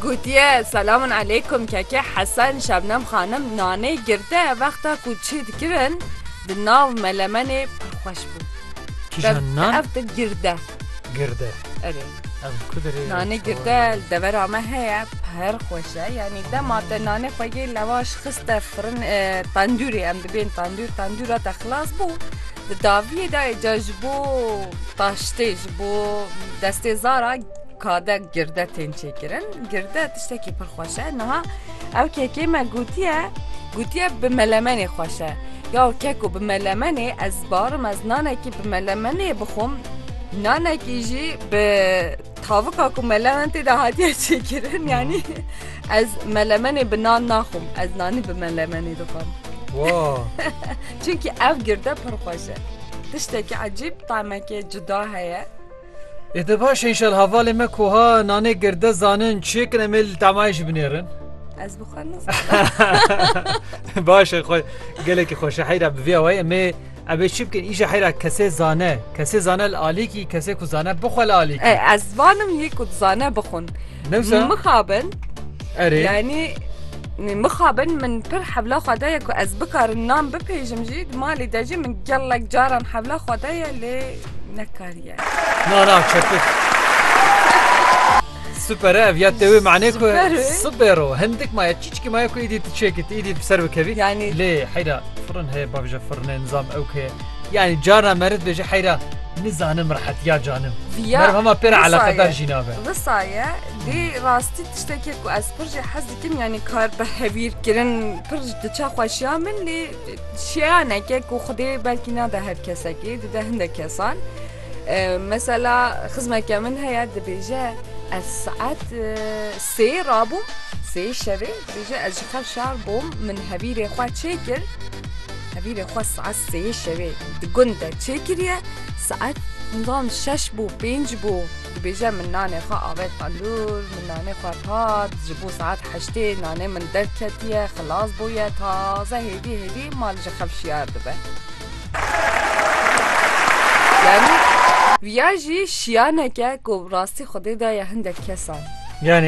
Gotiye, Selamun aleykum keke Hesen Şebnem xanim nanê girte vexta ku çi dikirin di nav melemenê pir xweş bû. Kîjan nan? Ev de girde. Girde. Erê. Ev ku derê. Nanê girde li devera me heye pir xweş e yanî dema te nanê xwe yê lewaş xiste firin tendûrê em dibên tendûr tendûra te xilas bû. Di daviyê dayê ca ji bo taştê ji Bo destê zara kade girde tên çêkirin girde tiştekî pir xweş e niha ew kekê me gotiye gotiye bi melemenê xweş e ya keko bi melemenê ez barim ez nanekî bi melemenê bixwim nanekî jî bi tavika ku melemen tê de hatiye çêkirin yanî ez melemenê bi nan naxwim ez nanî bi melemenê dixwim Wow. Çünkü ev girde pir xweş e. Tiştekî ecîb tamekê cuda heye. Ê te baş e înşallah hevalê me ku ha nanê girde zanin çêkin em ê li tamayê jî binêrin. Ez bi xwe nizanim. Baş e xwe gelekî xweş e heyra bi vê awayê em ê em ê çi bikin îşa heyra kesê zane kesê zane li alîkî kesê ku zane bixwe li alîkî. Ez vanim yê ku zane bixwin. Newsa. Mixabin. Erê. Yani mixabin min pir hevla xwe daye ku ez bikarin nam bipêjim jî di malê de jî min gelek caran hevla xwe daye lê nekariye. Na na çepik. Süper ev ya tevê mane ku sibero hindik maya çiçki maya ku îdî tu çêkit îdî ser bikevî yani lê heyra firin heye bavje firine nizam ew ke Yanî carna me rit bêje heyra nizanim rehetiya canim. Viya Meriv hema pê re eleqedar jî nabe. Wisa ye dê rastî tiştekê ku ez pir jê hez dikim yanî kar bi hevîr kirin pir ji diçe xweşiya min lê şeyaneke ku xwedê belkî nade her kesekê dide hindek kesan. Mesela xizmeke min heye dibêje ez saet sê rabûm sê şevê dibêje ez ji xev şar bûm min hevîrê xwe çêkir Hevî ve xwe saet sêyê şevê di gund de çêkiriye, saet nizanim şeş bû pênc bû dibêje min nanê xwe avet tendûr, min nanê xwe xwat, ji bo saet heştê nanê min derketiye, xilas bûye, taze hêvî hêvî mal ji xev şiyar dibe. Yanî viya jî şiyaneke ku rastî xwedê daye hindek kesan. Yanî